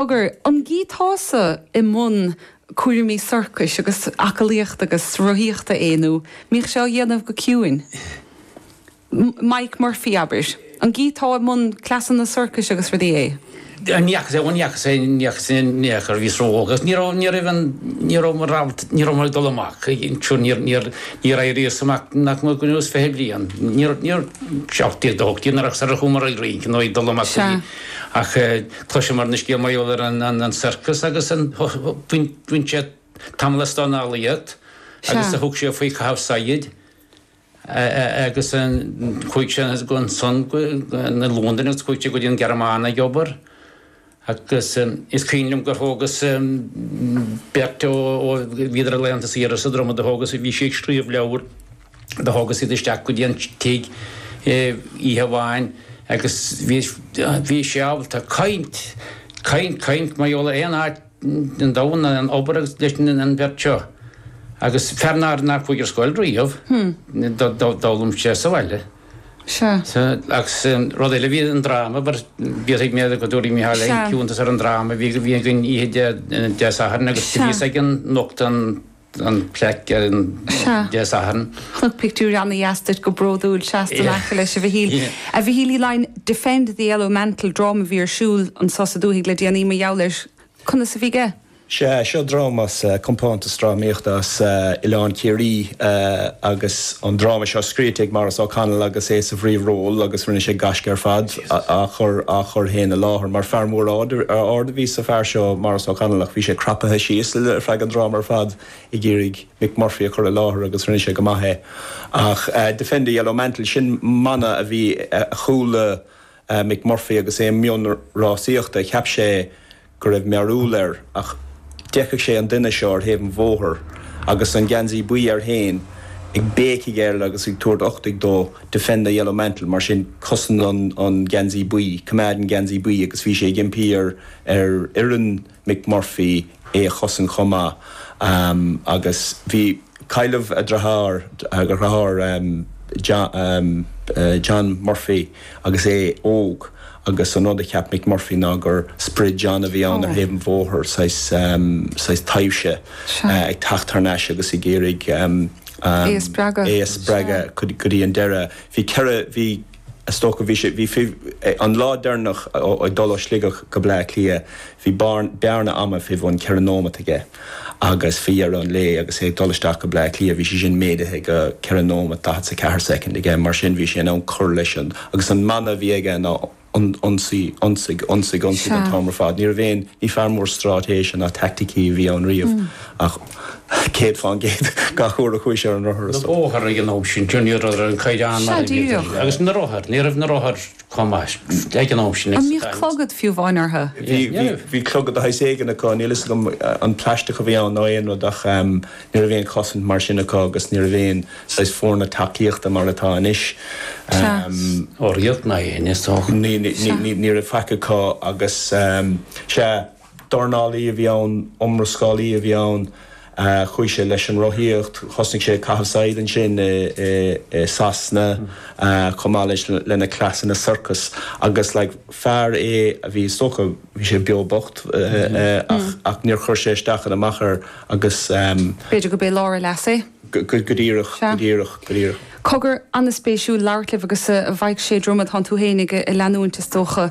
Cogar, an gcíteása i mbun cúraimí sorcais agus aclaíochta agus rothaíochta é nó an mbíodh sé á dhéanamh go ciúin? Mick Murphy, abair. An gcíteá i mbun cleasanna sorcais agus rudaí é? Ní fhaca sé, ní fhaca sé, ní fhaca sé in aon chor. Bhíos ró-óg agus ní raibh, ní raibh an, ní raibh ní rabhas, ní raibh mé ag dul amach. Ansin níor, níor, níor éiríos amach nach mór go rabhas fiche bliain. Níor, níor, seacht déag nó hocht déag nuair a chuamar ar rince nó ag dul amach go dtí, ach eh, Tá sé mar na scéal mar gheall ar an sorcas agus bhain sé tamall as an aclaíocht agus a thug sé faoi chaitheamh saighead agus chuaigh sé go Sasana Londain agus chuaigh sé go dtí an Ghearmáin ag obair agus is cuimhin liom gur thógas-sa beirt ó bhíodar ar laethanta saoire sa Dromaid a thógas a bhí sé ag scríobh leabhair Do thógas iad isteach go dtí an tigh oíche amháin agus bhí sé ábalta caint, caint, caint mar gheall ar aon áit ar domhan, an obair agus leis an bheirt seo. Agus fear nár chuaigh ar scoil riamh, d'fhoghlaim sé sa bhaile. Agus rud eile, bhí an dráma, b'fhéidir go dtabharfaidh Micheál cuntas ar an dráma a bhí againn oíche Dé Sathairn agus bhíos ag nochtadh an an plaic ar an Sea. Dé Sathairn. Chonac pictiúr ana-dheas díot go bródúil. Seasta in aice leis, a Mhichíl. A Mhichíl Uí Leidhin, Defend the Yellow Mantle, dráma a bhí ar siúl anseo sa dúthaigh le déanaí mar gheall air. Conas a bhí sé? Sea, seo dráma as compántas drámaíochta as Oileán Ciarraí agus an dráma seo scríte ag Maurice O'Connell agus é sa phríomhról agus rinne sé gaisce ar fad. á chur féin i láthair mar fear mór ard ab ea is ea an fear seo, Maurice O'Connell, ach bhí sé crapaithe síos feadh an dráma ar fad ag iarraidh Mick Murphy a chur i láthair agus rinne sé go maith é ach Defend the Yellow Mantle, sin mana a bhí a chuala Mick Murphy agus é i mbun rásaíochta, cheap sé. go raibh mearbhall air ach d'fheicfeadh sé an duine seo ar thaobh an bhóthair agus an geansaí buí air féin ag béicigh air agus ag tabhairt uchtaigh dó, 'Defend the Yellow Mantle', mar sin, 'Cosain an Geansaí Buí', 'Coimeád an Geansaí Buí', agus bhí sé ag impí ar fhoireann Mick Murphy é a chosaint chomh maith agus bhí. Cailleadh a dheartháir, John Murphy, agus é óg agus an rud a cheap Mick Murphy ná gur sprid John a bhí ann ar thaobh an bhóthair, saghas taibhse ag teacht thar n-ais agus ag iarraidh é a spreagadh go dtí an deireadh. Bhí ceithre. Is dócha bhí sé, bhí fidh, an lá deireanach ag dul ó Sligeach go Bleá Cliath, bhí bearn, bearna ama fé bhun ceithre nóimeat aige agus fé dheireadh an lae agus é ag dul isteach go Bleá Cliath, bhí sé sin méadaithe go ceithre nóimeat daichead 's a ceathair soicind aige. Mar sin bhí sé in ann cur leis an, agus an mana a bhí aige ná on, ionsaí, ionsaigh, ionsaigh, ionsaigh an t-am ar fad. Ní raibh aon, ní fear mór stráitéise ná taicticí a bhí ann riamh ach. 100 fán gcéad gach uair a chuaigh sé ar an rothar, is dócha. bóthar ag an am sin, John, ní raibh an caighdeán mar a bhí sé inniu. Agus na rothair, ní raibh na rothair chomh maith ag an am sin. An mbíodh clogad fiú amháin orthu? Bhí, bhí, bhí clogad de shaghas éigin acu, níl a fhios agam an plaisteach a bhí ann nó aon rud ach ní raibh aon chosaint mar sin acu agus ní raibh aon saghas foirne tacaíochta mar atá anois. Sea. Ó riamh ná aon, is dócha. Ní, ní, ní, ní, ní raibh faic acu agus, sea. Dornálaí a bhí ann, iomrascálaí a bhí ann. Chuaigh sé leis an rothaíocht, thosnaigh sé ag caitheamh saighid ansin i Sasana chomh maith leis lena cleasanna sorcais agus like fear é a bhí is dócha bhí sé beo bocht ach ach níor chuir sé isteach ná amach air agus ehm b'fhéidir gurb é lár a leasa é. Go díreach, go díreach, go díreach. Cogar ana-spéisiúil labhairt libh agus a Mhaidhc Sé, Dromaid, tá tú féin ag leanúint is dócha.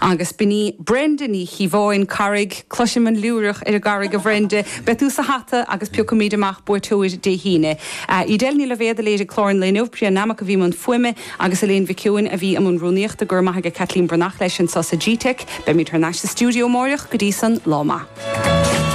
Agus b'in í Brenda Ní Chíobháin, Carraig, cloisim an liúireach ar an gCarraig a Bhrenda, beidh tú sa hata agus piocfaimid amach buaiteoir Dé hAoine. Edel Ní Loibhéad a léirigh clár an lae inniu, Priya Nammock a bhí i mbun fuaime agus Elaine Mhic Sheoin a bhí i mbun rúnaíochta. Go raibh maith aige Caitlín Breathnach leis anseo sa gteic. Beimid thar n-ais sa stiúideo amárach. Go dtí san, lá maith.